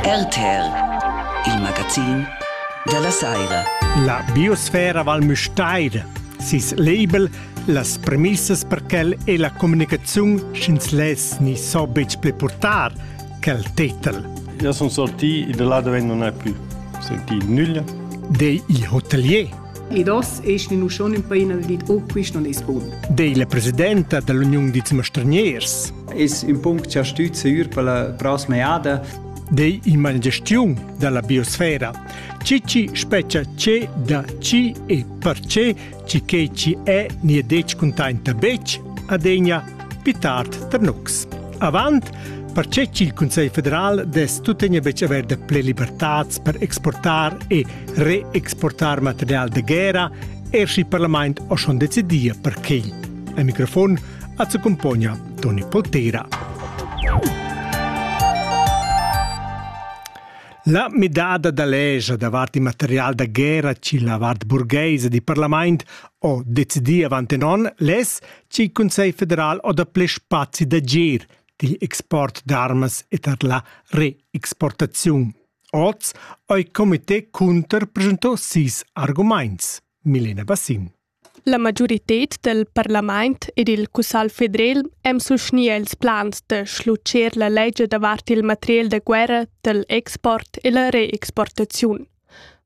RTR, il magazin dalla Saira. La biosfera Val Müstair, sis label, las premissas per quel e la communicaziun sch'ins less ni so betg pli purtar quel titel. Io sun sorti, da là dove non è più sentì nulla. Dei il hotelier Ed oz eschnin uss schon in paina dad dir, oh, quist non es bun. Dei la presidenta dall'Uniun dits mastraniers. Es ün punct cha stüd seur per la prossima jada. Dei ima la gestiun dalla biosfera. Ci ci speccia ce da ci e per ce, ci che ci è nie dec contenta bec, adegna pitart ternux. Avant, perché il Consiglio federal des tutegna bec aver de ple libertats per exportar e reexportar material de guerra er si parlament o schon decidia per quei. A microfon at accompagna Toni Poltera. La midada da legia davart il material da guerra ci la vart burgheisa di parlament o decidi avant non les ci Consell federal o da ple spazi d'agir digl export d'armas e tar la reexportaziun. Oz ha il comité cunter presentà sis argumaints. Milena Bassin. La majoritad del parlament ed il Cussal federal hem suscnì els plans da schluccer la legge davart il material da guerra del export e la reexportaziun.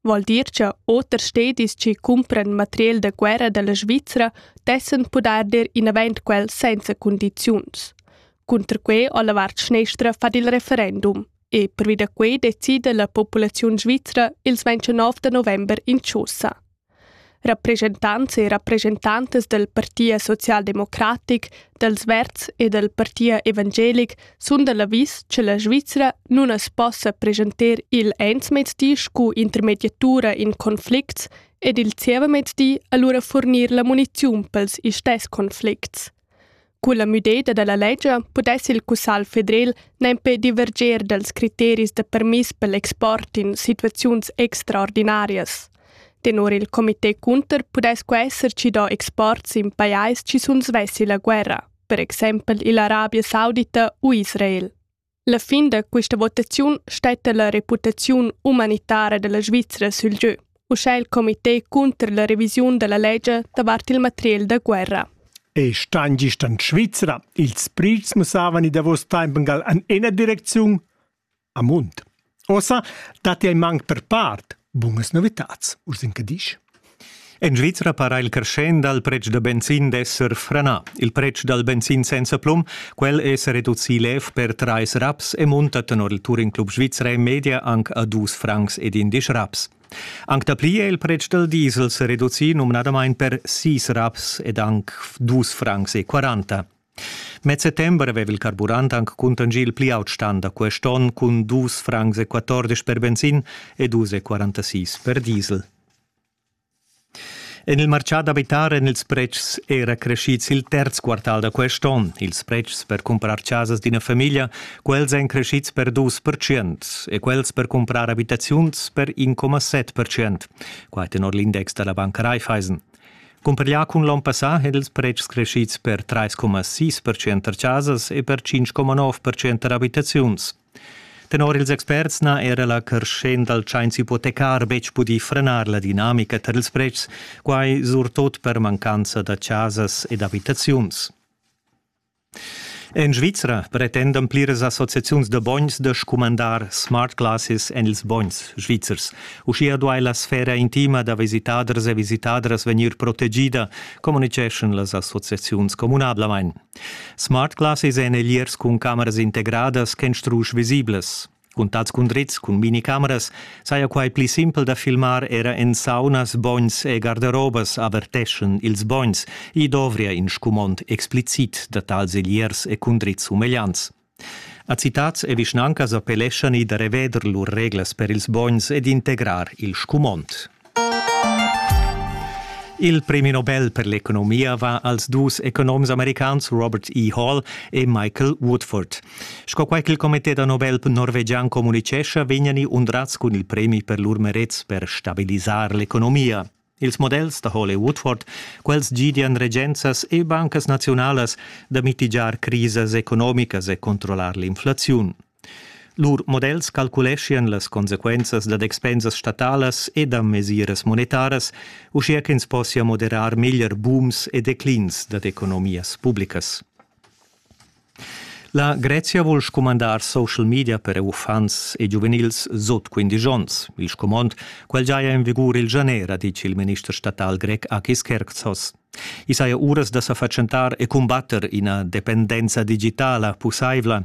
Vol dir che oters stedis che cumpran material da guerra della Svizzera dessen poder dir inavent quel senza condiziuns. Cunter quei ha la vart schnestra fat il referendum. e pervi da quei decida la populaziun svizra ils 29 da november in chaussa. Rappreschentants e rappresentantes del Partia socialdemocratic, dels Verds e del Partia evangelic sun dal avis che la Svizzera nun as possa presenter il ensmezdi scu intermediatura in conflicts ed il zievamezdi allura furnir la muniziun pels istes conflicts. Culla müdeda da la ledscha pudess il Cussagl federel nempe diverger dals criteris da permiss per l'export in situaziuns extraordinarias. Tenor il comité Cunter pudess quai esser chi do exports in pajais chi sun svessi la guerra, per exempel ill'Arabia Saudita u Israel. La fin da questa votaziun statta la reputaziun umanitara della Svizra sül giö, uschè il comité cunter la revisiun della legge davart il material da guerra. E stan gist an Svizra. Ils prits mussavan i davos temp gal an ena direcziun, a Mund. Ossa dat ei manc per part bunas novitats, ursin che disch. En Svizra para il crescent dal pretsch da benzin d'esser frenà. Il pretsch dal benzin senza plum, quel è sa reducì lev per trais raps e munta tenor il Touring Club Svizra e media anc a dus francs ed indisch raps. Anc dapli è il pretsch dal diesel sa reducì numnadamain per sis raps ed anc dus francs e quaranta. Mez settember aveva il carburant anc cuntanschì il pli aut stan da quest onn cun dus francs e quatordisch per benzin e dus e quarantasis per diesel. En il martgà d'abitar èn ils pretschs era creschids il terz quartal da quest onn. Ils pretschs per cumprar chasas d'ina famiglia, quels èn creschids per dus percent e quels per cumprar abitaziuns per 1,7 percent. Quai tenor l'index da la banca Raiffeisen. Cumpareglià cun l'onn passà èn ils pretschs creschids per 3,6 percent tar chasas e per 5,9 percent tar abitaziuns. Tenor ils experts n'ha era la creschenda dal tschains ipotecar betg pudì frenar la dinamica tar ils pretschs, quai surtot per mancanza da chasas ed abitaziuns. En Svizra pretendan pliras associaziuns da bogns da scumandar smart glasses en ils bogns svizzers. Uschia duai la sfera intima da visitaders e visitadras vegnir protegida, communitgeschan las associaziuns communablamain. Smart glasses èn egliers cun cameras integradas ch'èn strusch visiblas. Cuntads cun drizs cun minicameras saja quai pli simpel da filmar era en saunas, bogns e garderobas averteschan ils bogns. I dovria in scumond explicit da tals egliers e cun drizs umegliants. A citats e vischnancas appelleschan i da reveder lur reglas per ils bogns ed integrar il scumond. Il premi Nobel per l'economia va als dus economs americans Robert E. Hall e Michael Woodford. Sco quai ch'il comité da Nobel norvegian communicescha, vegnani undrats cun il premi per lur merets per stabilisar l'economia. Ils models da Hall e Woodford, quels gidian regenzas e bancas nazionalas da mitigiar crisas economicas e controllar l'inflaziun. Lur models calculeschian las consequenzas dad expensas statalas e da mesiras monetaras, uschia ch'ins possia moderar meglier booms e declins dad economias publicas. La Grezia vul scumandar social media per uffants e giuvenils sut 15 onns. Il scumond, quel giaja en vigur il janer, ha ditg il minister statal grec Akis Kerkzos. I saja uras da sa fatschentar e cumbatter ina dependenza digitala pussaivla.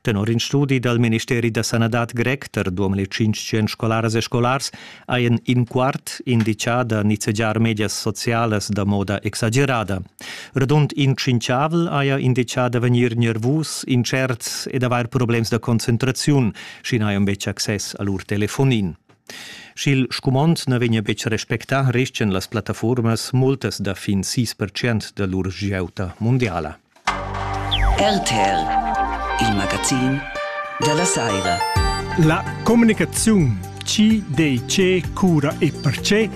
Tenor in studi dal ministeri da sanadad grec per 2500 scolaras e scolars hajan in quart indichà da nizzegiar medias socialas da moda exagerada. Radund in tschinchavel haja indichà da vegnir nervus, intscherts ed avair problems da concentraziun, sch'i n'hajan betg access a lur telefonin. Sch'il scumond na vegnia betg respectà, restian las plattafuormas multas da fin sis percent da lur giauta mundiala. RTL, il magazin della Saira. La comunicaziun CDC cura e perce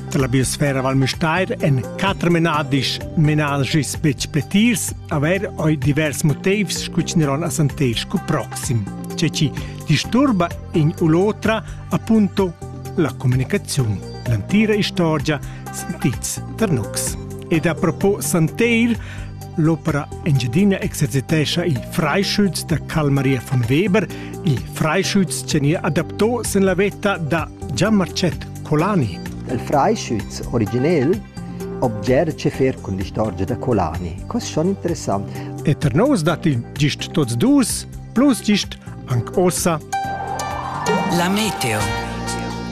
dalla biosfera Val Müstair en quatter menadis menal gis betg pletirs, aber oi divers motivs scu ci neron a santer scu proxim. Ceci, disturba in u l'otra appunto la communicaziun, l'antira istorgia sentids ternux. Ed a propos Santeir, l'opera Engiadina exercitescha il freischütz da Carl-Maria von Weber, il freischütz che adaptò sen la vetta da Gian-Marcet Colani. Il freischütz originel obger ce fer con l'istorgia da Colani. Cos schon interessant. E per nos dat il gist tots dus, plus gist Anc ossa. La meteo.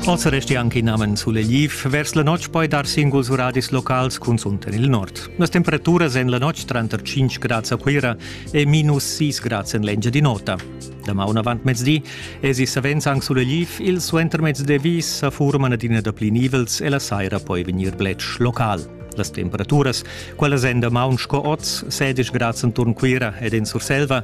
Ossa resti anche in amen sulegliv vers la notg poi dar singuls uradis locals cunsunter il nord. Las temperaturas en la notg tranter 5 grads a Cuira e minus 6 grads en l'Engiadin'Ota. Da maun avant mezdi esi savens anc sulegliv, il suentermezdi vis sa furman adina da pli nivels e la saira poi vegnir bletsch local. Las temperaturas, quellas en damaun sco oz, 16 grads enturn Cuira ed en Surselva,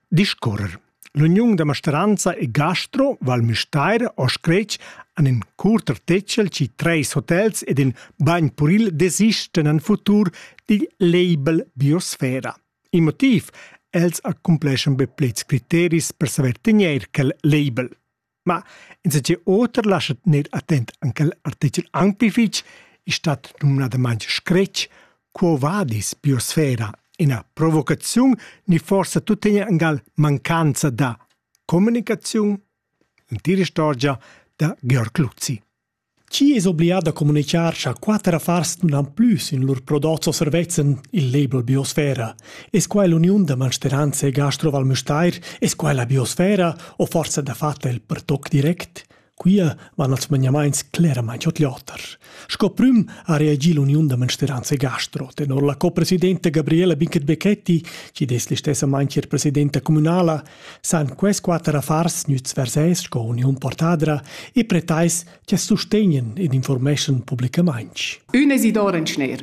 discorrer. L'uniun da masteranza e gastro Val Müstair ho scretg an in curter tecel ci treis hotels ed in bagn puril desisten an futur digl label biosfera. Il motiv els accumpleschan be plets criteris per saver tegner quel label. Ma insatge oter lascha tener attent an quel artichel anc pli fitg è stat numnadamain scretg «Quo vadis biosfera?» ina provocaziun ni forsa tuttegna angal mancanza da comunicaziun? L'entira istorgia da Georg Luzzi. Chi es oblià da comunichar cha quatter affars nun han plü sün lur prodots o servezzs in il label biosfera? Es quai l'uniun da mansteranza e gastro Val Müstair? Es quai la biosfera o forsa dafatta il per toc direct? Quia van als maniamaints cleramaing ot l'oter. Sco prüm ha reagi l'uniun da mansteranza e gastro, tenor la copresidenta Gabriela Binkert-Becchetti, chi'd es listessamaing ir presidenta cumünala, san quels quater affars nüts vers eis sco uniun portadra e pretais che sustegnen ed informeschan publicamainch. Ün Isidor in schner.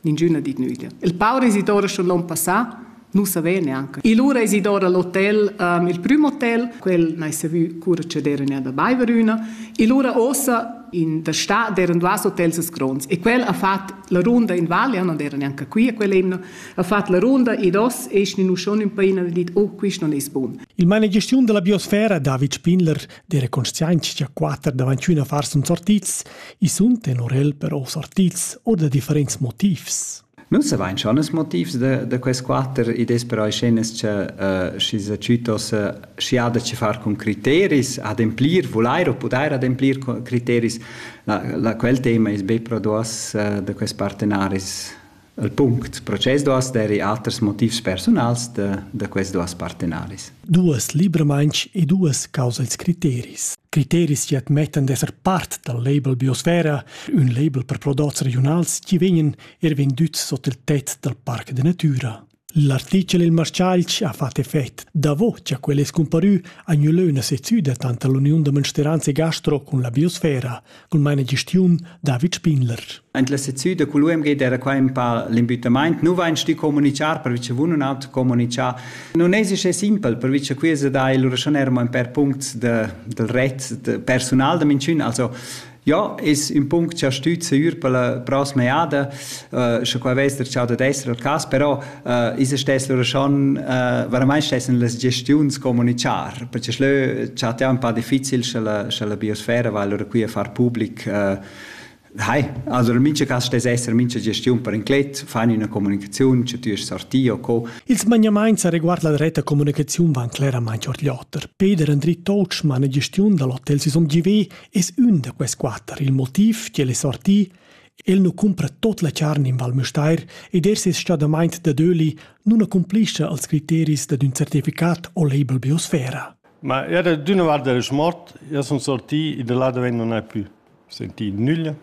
Ningüna dit nüda. Il paur Isidor schon l'on passà nu savè neanche. E lura Isidor all'hotel, um, il prüm hotel, quel n'hai savü cura che d'erene da Baiverüna. E lura ossa in der Stadt, deren duas Hotels es gronds. E quel ha fat la runda in Val, ja non era neanche qui a quell'emna. ha fatg la ronda ed oss e schnin uschon ün paina e dit oh quist non es bun. Il managestiun della biosfera David Spindler de reconstianzia quater davanti una far sun sortits, i sun tenorel però sortits o da differents motivs. Nun savain schon es motivs da, da quest quater idees però scenas che uh, schi sa citos uh, schi ha da ci far con criteris ademplir volair o pudair ademplir criteris la, la quel tema es be pro duas uh, da quest partenaris El punct process duas deri aters motivs personals da, da quest duas partenaris. Duas libramainch e duas causa ils criteris. Criteris chi admettan d'esser part dal label Biosfera, ün label per prodots regionals chi vegnan er vendüts sot il tet dal Parc de Natura. L'artichel Il Marschalch ha fatg effect. Davo cha quel es cumparü ha gnü lö üna sezzüda tanter l'Uniun da mensteranza e gastro cun la biosfera, cul managestiun David Spindler. Aint la sezzüda cul UMG d'eira qua ün pa l'impütamaint. Nu vain stü comunichar pervi cha vun nun haut comunichà. Nun es uschè simpel pervi cha quia sa dà il raschunèrem ün per punts de, del ret de persunal da minchün, also Ja, ist ein Punkt ja stüt sicur per la prossima jada, äh, schon qua weiss der ciao da destra al cas, però äh, ist es stess loro schon äh, veramente stessen las gestiuns comunicar, perché schlö ciao è un po' difficile sche la biosfera va allora qui a far public äh, Hai, also in mincha cas stess esser mincha gestiun per inclet, fai una comunicazione, che tu sorti o co. Il smaniamaint sa riguard la reta comunicazione van cleramente ordliotter. Peter Andri Totschmann, gestiun dall'hotel Sisom GV, Es ün da quels quatter il motiv ch'el es sorti El nu cumpra tot la charn in Val Müstair ed er ses stadamaint da Döli nun accumplischa als criteris dad ün certificat o label biosfera. Ma era d'üna vart del smort, io sun sorti e da là daven non hai plü sentì nüglia.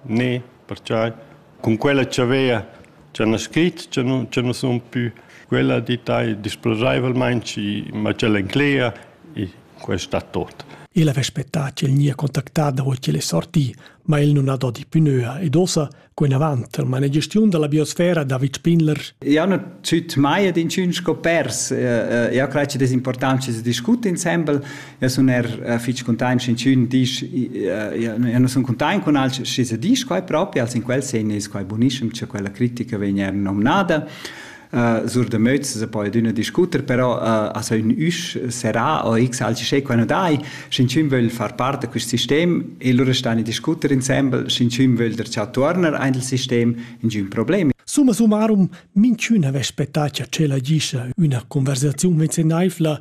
Ne, pertgei cun quella tschavea cha n'ha scrit cha nu cha nus sun pü, quella di tai disploraivelmaing schi ma tg'el enclegia e quai sta tuot. El avess spettà ch'el gnia contactà davo ch'el es sorti, ma el nun ha do di pü nöa ed uossa co inavant al manegestiun da la biosfera David Spindler. Eu nu züt mai ad inchün sco pers. Eu craj chi'd es important chi se discut insembel. Eu sun er fich cuntaint sch'inchün disch eu nu sun cuntaint cun alch schi sa disch quai propi, als in quel sen es quai bunischem cha quella critica vegn eir nomnada. Sur da Möz se po üna discuter, però as ha ün üsch serrà o x alch sche quai nu dai, sch'inchün vögl far part da quist sistem e lura stan i discuter insembel, sch'inchün vögl der cha tuorner aint il sistem, inchün problem. Summa summarum, minchün havess spettà cha tschella gischa üna conversaziun venzenaivla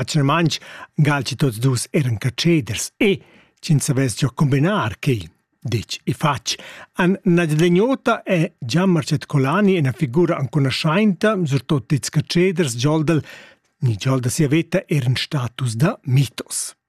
Atgnamaintg galgi tots dus eran catscheders e, sch'ins savess giò combinar quai, ditg e fatg, han Nadia Deniota e Gian Marcet Colani ina figura ancunaschainta, surtot ils catscheders giòl dal ni giòl da sia veta eran status da mitos.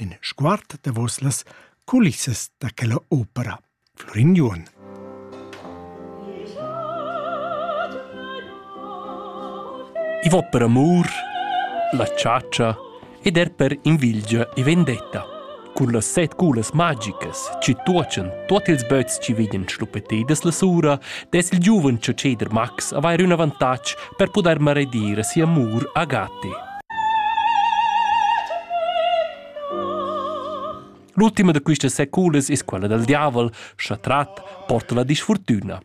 In sguard davos las culissas da quella opera. Florin Juon. I va per amur, la chatscha ed er per invilgia e vendetta. Cun las set culas magicas ci tuochan tuot ils böts ci veden schluppetedas la sura, des il giuven cioceder Max avair un avantatg per pudair maredir si'amur a Gatti. L'ultima da questas seculas es quella dal diavel, scha trat porta la disfortüna.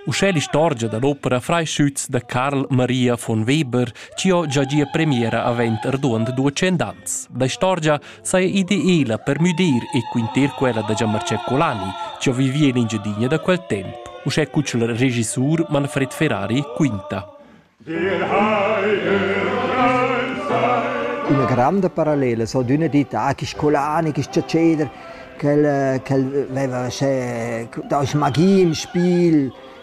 Uschè l'istorgia da l'opera Freischütz da Karl Maria von Weber, ci ho già gia premiera avent erduond duecent ans. La istorgia saja ideela per müdir e quinter quella da Gianmarcè Colani, chi ho vivì in Engiadina da quel temp, uschè cu ch'el regissur Manfred Ferrari quinta. Una granda parallela so d'una ditta, che scolani, che sciaceder, che el veva sce da magie im Spiel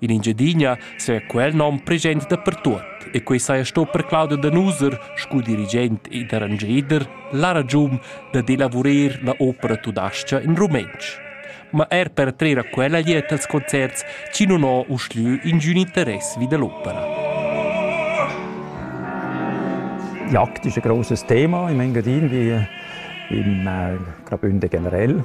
In Engiadina saja quel nom present dapertuot e quei saja sto per Claudia Danuser scu dirigent ed arrangeder la ragiun dad elavurer la opera tudascha in rumentsch. Ma er per trer a quella gliet als concerts chi nun ho uschlü ingün interess vi da l'opera. Jagd ist ein grosses Thema im Engadin wie im äh, Graubünden generell.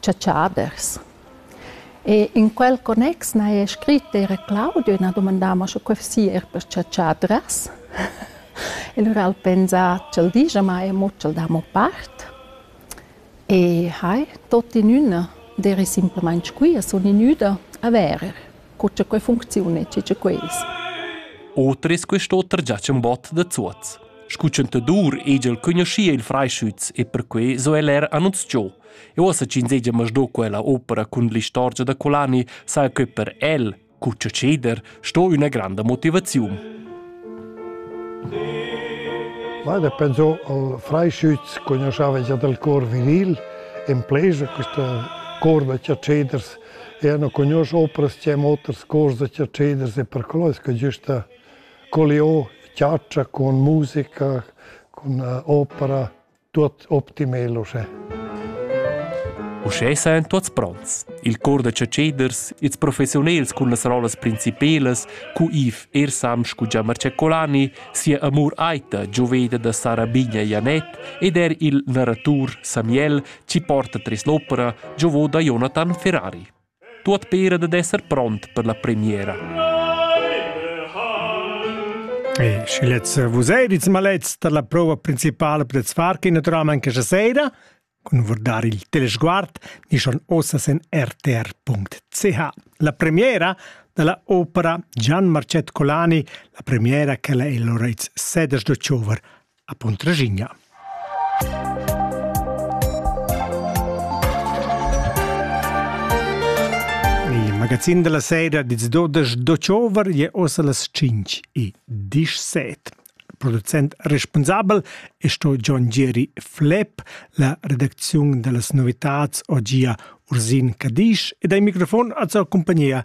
chatschaders. E in quel connex n'haja scrit era Claudio e n'ha dumandà mo sche quai sia er per chatschadras. E lura al pensa ch'el digia ma e mo ch'el dà mo part. E hai, tot in üna, deri simplamain squia, sun inüda a verer. cu cha quai funcziuna e chi cha quels. Oter es quest'oter già ch'embot da Zuoz. Scu chantadur egl cugnuschia il Freischütz e perquai so el er annunzchò. E uossa ch'insegia masdo quella opera cun l'istorgia da Colani sa que per el, cu cha ceder, sto üna granda motivaziun. Guarda, pensò al Freischütz cugnuschava già dal cor viril, in pleja questa corda cha ceders Eu nu cugnuosch opras chi han oters cors da chatscheders e per quello es que güsta collià chatscha cun musica, cun opera, tuot optimal uschè. Uschè sajan tuots pronts. Il cor da chatscheders, ils professiunels cun las rollas principelas, cu Yves Ersam scu già Marcecolani, sia amur aita gioveda da Sara Bigna Janet ed er il narratur Samuel chi porta tres l'opera giovò da Jonathan Ferrari. Tuot pera dad esser pront per la premiera. E schi letz vus eirits malets da la prova principala per Zwarke naturalmente questa sera, con guardare il telesguard di schon osas in rtr.ch. La premiera della opera Gian Marcet Colani, la premiera che la è Lorenz Seders d'Ochover a Puntraschigna. Il magazin della sera diz dodas d'October je ossa las 5 e 17. Producent responsabel è sto John Jerry Flepp, la redaczione delle novità oggi a Ursin Cadisch e dai microfon a sua compagnia